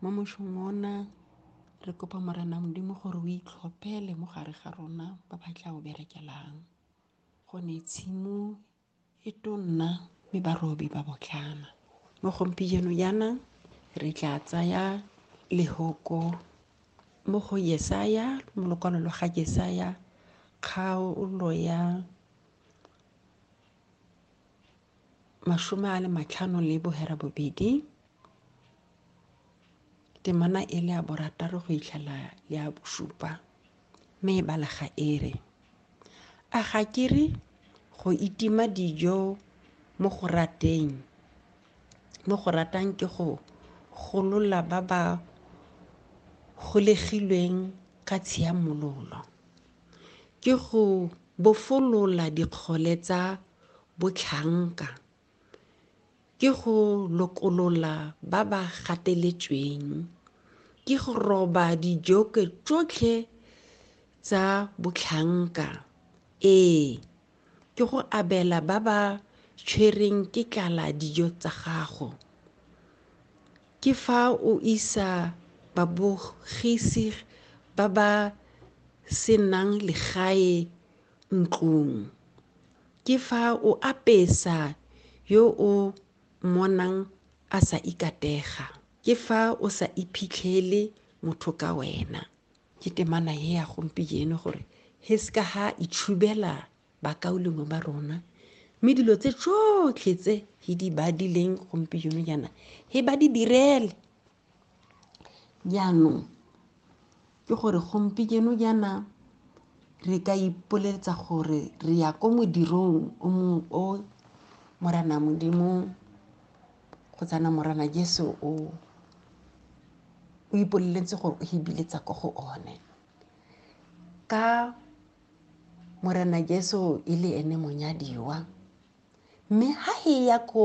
mo mošong ona re kopa morena modimo gore o itlhophele mo gare ga rona ba ba tla o berekelang gone tshimo e tonna mme barobi ba botlana mo gompieno yana re tla tsaya lehoko mo go yesaya mo lokwalo lo ga jesaya kgaolo ya mashome a le matlhano le bohera bobedi temana e le ya borataro go itlhela le ya bosupa mme e balega e re a ga ke re go itima dijo mo go rateng mo go ratang ke go golola ba ba golegilweng ka tshiamololo ke go bofolola dikgole tsa botlhanka ke go lokolola ba ba gateletsweng ke go roba dijoke tsotlhe tsa botlhanka ee ke go abela ba ba tshwereng ke tlala dijo tsa gago ke fa o isa babogisi ba ba senang legae ntlong. Ke fa o apesa yo o monang a sa ikatega. Ke fa o sa iphitlhele motho ka wena. Ke temana e ya gompieno gore he se ka ha itshubela bakaulengwe ba rona mme dilo tse tsotlhe tse he di badileng gompieno jaana he ba di direle jaanong ke gore gompieno jaana re ka ipoletsa gore re ya ko modirong o mongwe o morana modimo go tsana morana jesu o o ipoleletse gore o hibiletsa ko go one ka morana jesu e le ene monyadiwa mme ha e ya ko